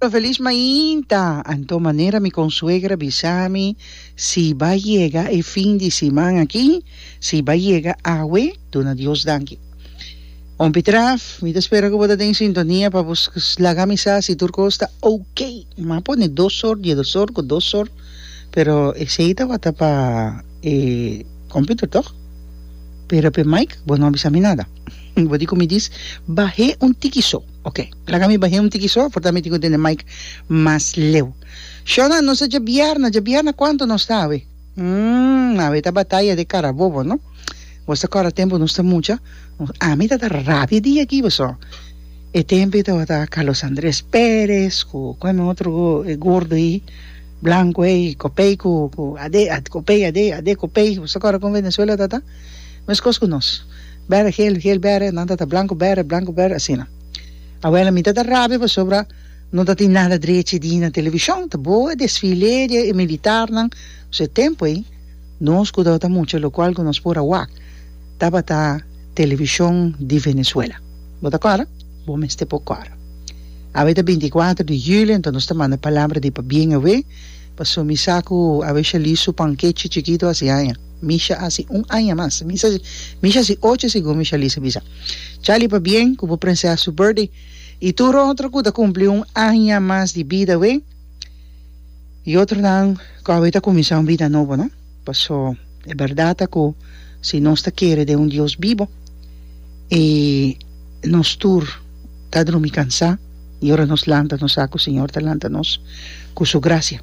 Lo feliz mainta, anto manera mi consuegra bisa mi si ba yega e fin di siman aki, si ba yega awe, duna Dios danki. Hompie Traff, mi ta spera cu bo ta den sintonia pa bo laga mi sa si tur cos ta ok. Mi a pone dos or, diedosor cu dosor, pero esey ta wata pa e computer, toch? Pera pe mic bo no a bisa mi nada. Mi por di ku mi dis, Bah'é un tiki so. Ok, laga mi bah'é un tiki so, aforta mi tin ku tende mic mas leu. Shona, nos ta djabièrna, djabièrna kuantu nos ta awe? Umm, awe ta bataya den Carabobo, no? Bos ta kòrda tempu nos ta mucha? Ami ta ta rabia di aki boso. E tempu ei tabata Carlos Andrés Pérez ku kon mi otro go, e gordo ei, blanku ei, kopei ku ku Adé, kopei Adé, Adé kopei. Bos ta kòrda kon Venezuela ta ta? Meskos ku nos. Bere gel, gel bere, nan tata blanco bere, blanco bere, asina. Abuela mi tata rabia pasobra no tatin nada drechi di na television, ta boe desfile di e militarnan, so e tempo ey nos cu tabata mucha locual cu nos por a wak tabata television di Venezuela. Bo ta cora? Bo mester por cora. Awe ta binti y kuater di julio enton nos ta manda palabra di pabien awe, pasobra mi sa cu awe Shalí su pankechi chikito a haci aña. Misha asi un aña mas. Misha si ocho segun Misha Lisa bisa. Charlie pabien ku bo prensea su birthday i tur otro ku ta kumpli un aña mas di bida awe i otronan ku awe ta kuminsá un bida nobo no paso e bèrdat ta ku si nos ta kere den un Dios bibo i nos tur ta drumi kansá i ora nos lanta nos sa ku Señor ta lanta nos ku su grasia.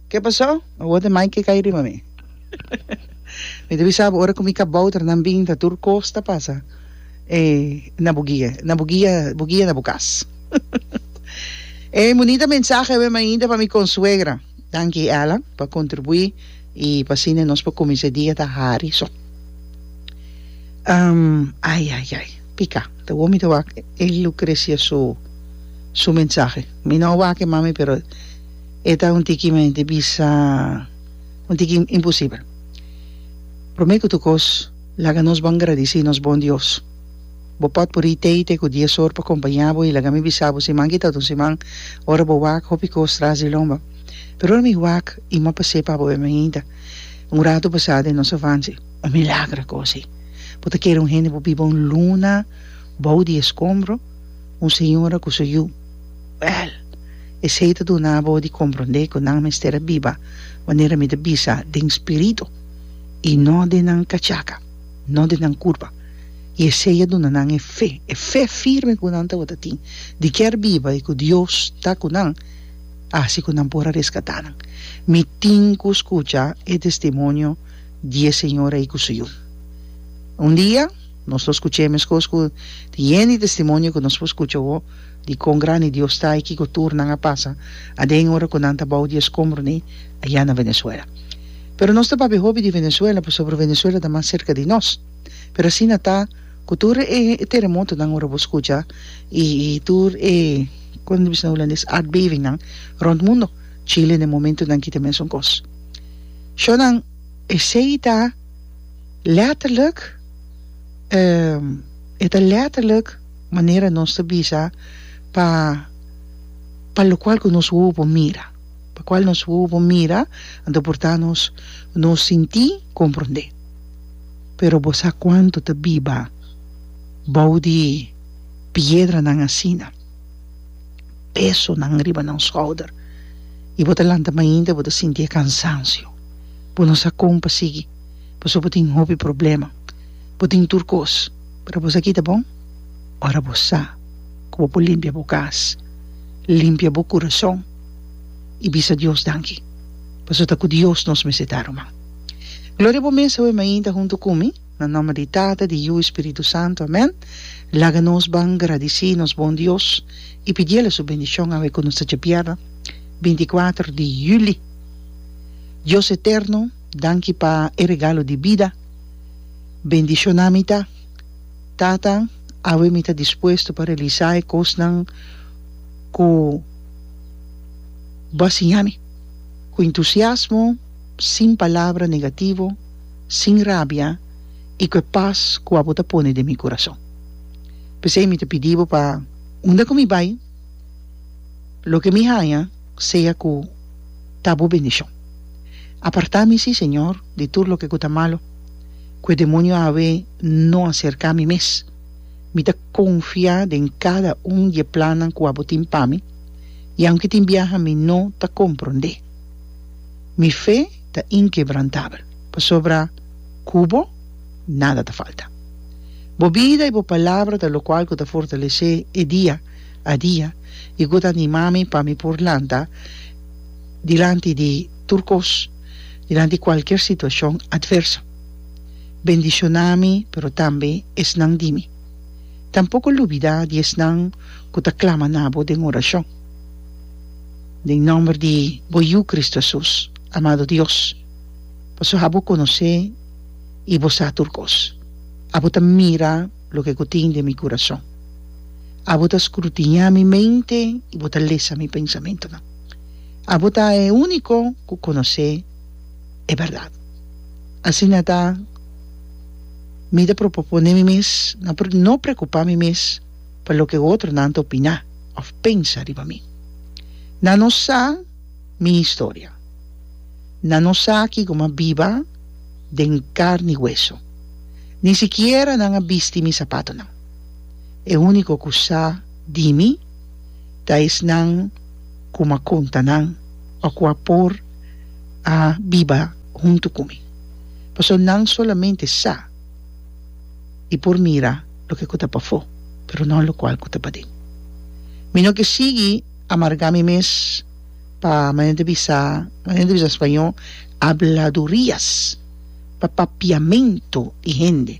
Ke pasó? Awor ta mai ke kai riba mi. Mi ta bisa bo ora ku mi ka bou tra nan binta tur kos ta pasa e na bo guia, na bo guia, bo guia na bo kas. E bunita mensahe awor mainta pa mi konsuegra. Danki Ella pa kontribuí i pa asina nos por kuminsá e dia ta hari so. Am ai ai ai pika ta wou mi ta wak e Lucrecia su su mensahe. Mi no a wak e mami pero. E ta un tiki men di bisa un tiki imposibel. Prome ku tur kos, laga nos bon gradisí nos bon Dios. Bo pòt pur'i teite ku dies or pa kompañá bo i laga mi bisa bo siman kita ta un siman ora bo wak hopi kos tras di lomba. Pero ora mi wak i mò pa sepa bo bem ainda un ratu basá den nos avansi. Un milagra kos ei. Bo ta kere un hende por biba un luna bou di e skombro? Un señora ku su yu. Wèl, esei ta duna bo di komprondé ku nan mester a biba manera mi ta bisa, den spiritu i no den nan kachaka, no den nan kurpa. I esei a duna nan e fe, e fe firme ku nan tabata tin di ke a biba i ku Dios ta ku nan, a hasi ku nan por a reskatá nan. Mi tin ku skucha e testimonio di e señora ei ku su yu. Un dia nos lo skuch'é meskos ku tin yen di testimonio ku nos por skucha awor. di kon grandi Dios ta i kiko tur nan a pasa aden ora ku nan ta bou di e skombro ni aya na Venezuela. Pero nos ta papia hopi di Venezuela pasobra Venezuela ta mas serka di nos. Pero asina ta ku tur e teremotonan ora bo skucha i tur e, kon ta bisa na hulandes, aardbevingnan rònt mundo. Chile den momentunan aki ta mesun kos. Shò nan, esei ta lètterlik, e ta lètterlik, manera nos ta bisa pa pa locual cu nos wowo por mira, pa cual nos wowo por mira a ta porta nos nos sinti comprende. Pero bo sa cuanto ta biba bou di piedranan asina, pesonan riba nan schouder y bo ta lanta mainta bo ta sinti e cansancio, bo no sa con pa sigui pasobra bo tin hopi problema, bo tin tur cos. Pero boso a kita bon ora bo sa ku bo por limpia bo kas, limpia bo kurason i bisa Dios danki, pasobra ta ku Dios nos mester ta ruman. Gloria bo mes awe mainta huntu ku mi, na nòmber di Tata, di Yu i Spiritu Santu. Amèn. Laga nos ban gradisí nos bon Dios i pidiel a su bendishon awe ku nos ta djabièrnè binti i kuater di yuli. Dios eterno, danki pa e regalo di bida. Bendiciona mi ta, Tata, awe mi ta dispuesto pa realisa e cosnan cu Bo a siña mi, cu entusiasmo, sin palabra negativo, sin rabia y cu e paz cu abo ta pone den mi curason. P'esey mi ta pidi Bo pa unda cu mi bay, loke mi haña, sea cu ta Bo bendicion. Aparta mi, si, Señor, di tur loke cu ta malo. ku e demonio awe no a serká mi mes. Mi ta konfiá den kada un di e plannan ku abo tin pa mi, i aunke tin biaha mi no ta komprondé. Mi fe ta inkebrantabel, pasobra ku bo nada ta falta. Bo bida i bo palabra ta lokual ku ta fortalesé e dia a dia i ku ta animá mi pa mi por lanta dilanti di tur kos. dilanti cualkier situacion adverso. Bendiciona mi, pero tambe esnan di mi. Tampoco lubida di esnan cu ta clama na bo den oracion. Den nomber di bo Yu Cristo Hesus, amado Dios, pasobra abo conoce y bo sa tur cos. Abo ta mira loke cu tin den mi curason. Abo ta scrutinia mi mente y bo ta lesa mi pensamentonan. Abo ta e úniko ku konosé e bèrdat. Asina ta, mi ta propoponé mi mes na por no preokupá mi mes pa loke e otronan ta opiná òf pensa riba mi. Nan no sa mi historia. Nan no sa ki komo a biba den karni i weso. Ni sikiera nan a bisti mi sapatonan. E úniko ku sa di mi, ta esnan ku m'a konta nan o ku a por a biba huntu ku mi, pasobra nan solamente sa i por mira loke ku ta pafó, pero no lokual ku ta paden. Mi no ke sigui amargá mi mes pa manera di bisa, manera di bisa na spañó, habladurias, pa papiamentu di hende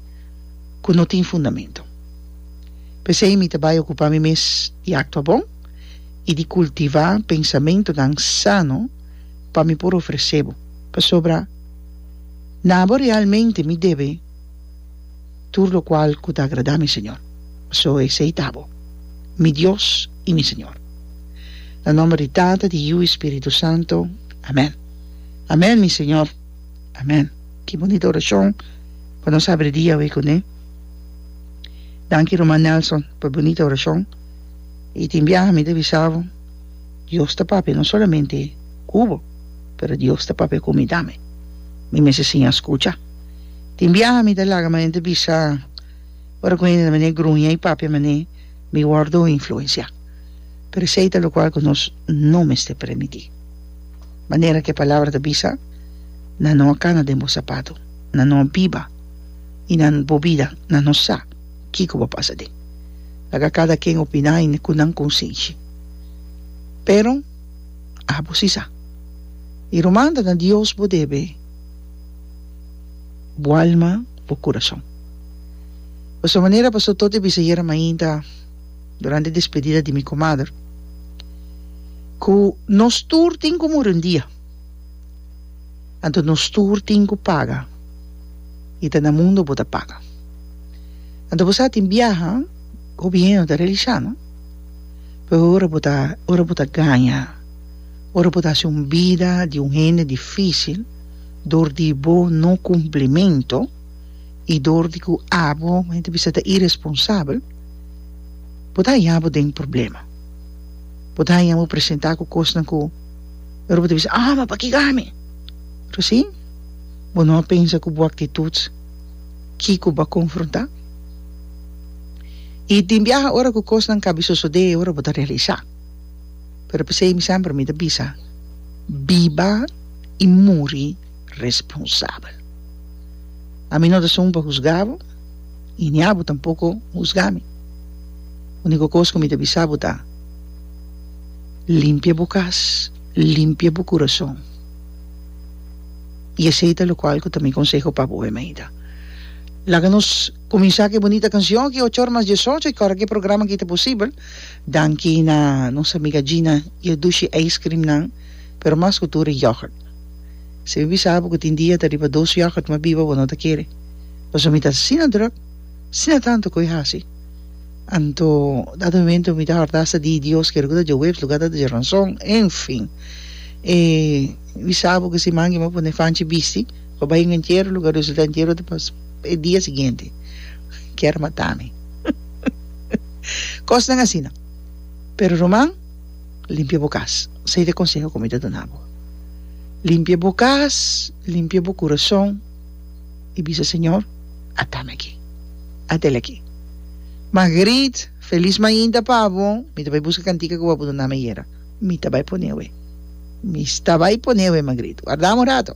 ku no tin fundamentu. P'esei mi ta bai okupá mi mes di aktua bon i di kultivá pensamentunan sano pa mi por ofresé bo. Pasobra na bo realmente mi debe tur lokual ku ta agradá mi Señor, pasobra esei ta bo, mi Dios i mi Señor. Na nòmber di Tata, di Yu i Spiritu Santu, amèn. Amèn, mi Señor. Amèn. Ki bunita orashon pa nos abri dia awé kuné! Danki Ruman Nelson pa e bunita orashon i tin biaha mi ta bisa bo Dios ta papia no solamente ku bo pero Dios ta papia ku mi tambe mi mester siña skucha tin biaha mi ta laga manera ta bisa ora ku hende ta manera gruña i papia manera mi wordo influensia pero esei ta lokual ku nos no mester permití manera ku e palabra ta bisa nan no a kana den bo sapato nan no a biba y nan bo bida nan no sa kico bo pasa den. Laga cada ken opina y cu nan consenshi. Pero abo si sa. Y ruman ta na Dios bo debe bo alma, bo curason. Pasobra manera Pastor Toti a bisa ayer mainta durante despedida di mi comader cu nos tur tin cu muri un dia. Anto nos tur tin cu paga y ta na mundo bo ta paga. Anto bo sa tin biaha, gobierno ta realisha no. Pero ora bo ta ora bo ta gaña, ora bo ta haci un bida di un hende dificil dor di bo no cumplimento y dor di cu abo bo hende ta bisa ta iresponsabel, bo ta haña bo den problema. Bo ta haña bo presenta cu cosnan cu. Pero bo ta bisa, ah, ma pakiko ami? Recién bo no a pensa cu bo actitud kiko bo a confronta? Y tin biaha ora cu cosnan cabi sosode y ora bo ta realisa. Pero pesey mi semper mi ta bisa, biba y muri responsabel. Ami no ta sun pa husga bo y ni abo tampoco husga mi. Unico cos cu mi ta bisa bo ta. Limpia bo kas, limpia bo kurason. I esei ta lokual ku ta mi konseho pa bo, Emeida. Laga nos kuminsá ku e bunita kanshon aki ocho ora mas diesocho i kòrda ku e programa aki ta posibel, danki na nos amiga Gina i e dushi ijskrim nan, pero mas ku tur e yògùrt. Si mi bisa bo ku tin dia ta riba dos yògùrt mas biba bo no ta kere, pasobra mi ta asina drùk, asina tantu ku e hasi. Anto, dat momento mi ta hòrda asta di Dios kere ku ta dje webs lugá ta dje ranson. En fin, e wisá bo ku e siman ke mi a pone fanchi bisti pa bai un entiero lugá. Resultá entiero ta pas e dia siguiente. Kier matá mi. Kosnan asina. Pero ruman, limpia bo kas. Sa i ta e konseho ku mi ta duna bo. Limpia bo kas, limpia bo kurason. i bisa, Señor, a tami aki. A tel aki. Margriet, felis mainta pa bo, mi ta bai buska kantika ku bo a puru nami ayera. Mi ta bai pone awe. Mi sta bai pone awe, Margriet. Warda un rato.